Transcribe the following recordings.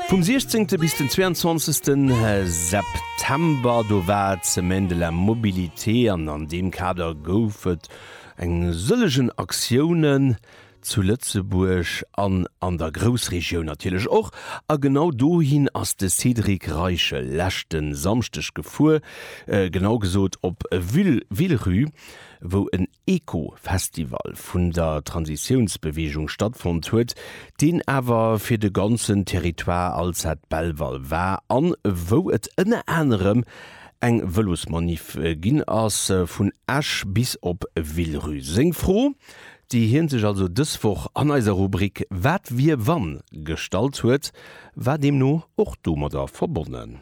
Vum 16 bis den 22 September do war d'Semaine de la Mobilité an an deem Kader gouf et eng sëllegen Aktiounen zu Lëtzebuerg an an der Groussregioun natierlech och. A genau dohin ass de Cédric Reichel leschte Samschdeg gefuer, genau gesot op Villerupt, wou en Eco-Festival vun der Transitiounsbeweegung stattfonnt huet, deen awer fir de ganzen Territoire Alzette Belval war an wou et ënner anerem eng Vëlosmanif ginn ass vun Esch bis op Villerupt. Seng Fro, déi hien sech also dës Woch an eiser Rubrik Wat wier wann gestallt huet, war deemno och domadder verbonnen.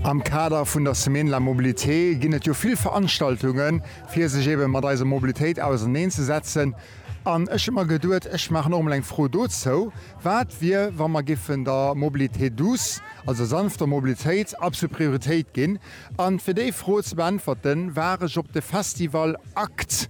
Am Kader vun der Semaine de la Mobilité ginn et jo vill Veranstaltungen, fir sech eebe mat eiser Mobilitéit auserneen ze setzen. An ech hu mer geduet, ech maachen och emol eng Fro dozou, Wat wier, wa mer géifen der Mobilité douce, also der sanfter Mobilitéit, absolut Prioritéit ginn? An fir déi Fro ze beäntwerten, war ech op de Festival akt.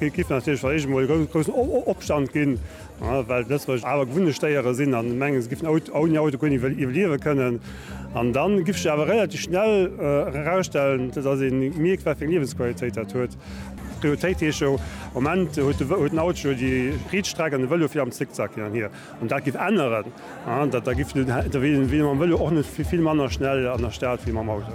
Et géif natierlech vläicht eemol e groussen Opstand ginn, well d'Lëtzebuerger awer gewunnecht Déiere sinn a mengen, se géifen ouni Auto guer net iwwerliewe kënnen. An da géif sech awer relativ schnell erausstellen, datt ee mierkt, wat fir eng Liewensqualitéit dat huet. D'Prioritéit heescht jo am Moment, huet den Auto jo déi Rietstreck an de Vëlo fir am Zickzack hin an hier. Wann dat géif änneren, da wier ee mam Vëlo och net vill manner schnell an der Stad wéi mam Auto.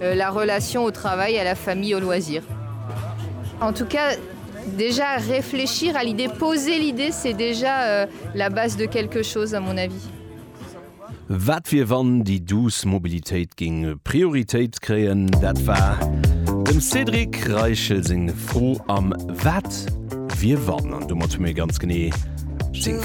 La relation au travail, à la famille, aux loisirs. En tout cas, déjà réfléchir à l'idée, poser l'idée, c'est déjà la base de quelque chose, à mon avis. Wat wier wann déi douce Mobilitéit géing Prioritéit kréien? Dat war dem Cédric Reichel seng Fro am Wat wier wann? An domat hu mir ganz genee seng.